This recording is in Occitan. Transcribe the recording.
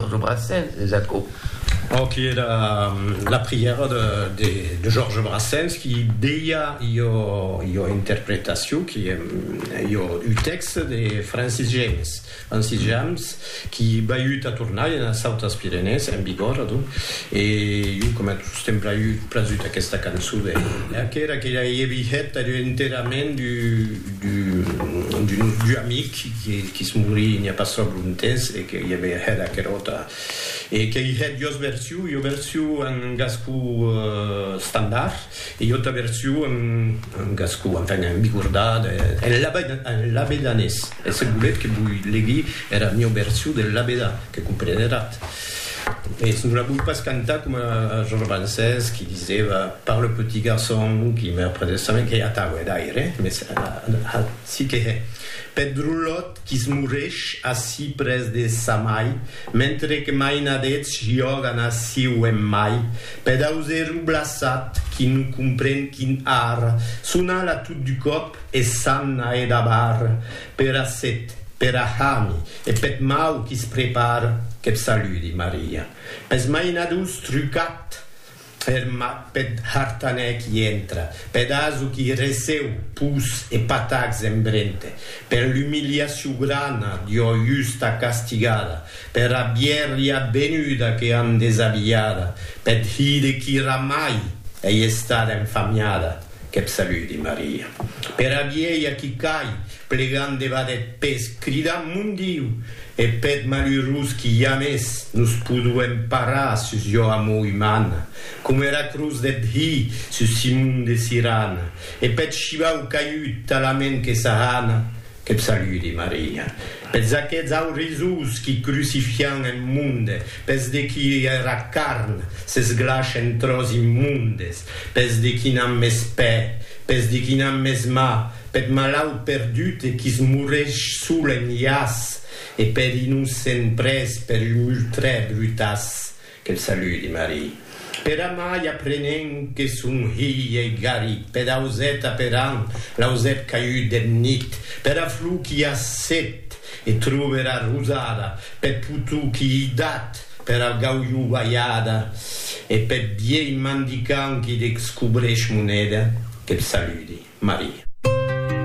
Lo Brassens, es aquò. Aqui e era la prièra de Georges Brassens qui deia ua interpretacion qui en ua tèxt de Francis James, Francis James qui baiut a Tournai enes Autas Pirenèes, en Bigòrra donc, e jo coma tot sostemp baiut prazut aquesta cançon de aquera que i avièt enterament d'un amic Que quis morir n'i a pas sòc lo ntens e que i avèi hèt aquel autre e que i hèt duas versions, ua version en gascon standard e ua autra version en gascon, enfin en bigordat, en labedanés e se volètz que voi legui era mieu version del labedan que compreneratz mès non la voi pas cantar coma Georges Brancés qui disèva par le petit garçon qui meurt près de sa maire que atau hè d'aire mès Si que hè. Peth drolot qui's moresh ací près de sa mai, mentre que mainadets jògan aciu en mai, peth auseru blaçat qui non compren quin ar, son ala tot du còp e s'an a hè dabar pera set, pera hami e peth mau qui's prepar, que'p saludi, Maria. Pes mainadors trucat! Ferma peth hartanèc i entra. Peth aso qui receu pus e patacs en brente. Per l'umiliaciu grana d'ua justa castigada. Pera bièrria venuda que an desabilhada. Peth hire qui ramai ei estada enfamiada. Qu'eb saludi, Maria. Pera vielha qui cai, plegant debat eth pes, cridant, Mon Diu! E peth malurós qui jamès nos poduem parar sus jo amor umana, coma era cruz deth Hi sus Simon de Sirana, e peth shivau caiut talament que s'ahana, Qu'eb saludi, Maria. Peths aqueths aurisós qui crucifian eth monde, Pes de qui era carn s'esglaç en tròç immundes, pes de qui n'an mès pè, pes de qui n'an mès mà, peth malaut perdut e quis morreix sol en llaç, e per innocent pres per un multrè brutaç. Que'l saludi, Marie. Per amai aprenent que son hilh ei garit per auset aperant l'ausèp caiut deth nit pera flor qui a set e tròbe era rosada peth potou qui ei dat per algaulhou balhada e peth vielh mandicant qui descobreix moneda, que t'saludi, Maria.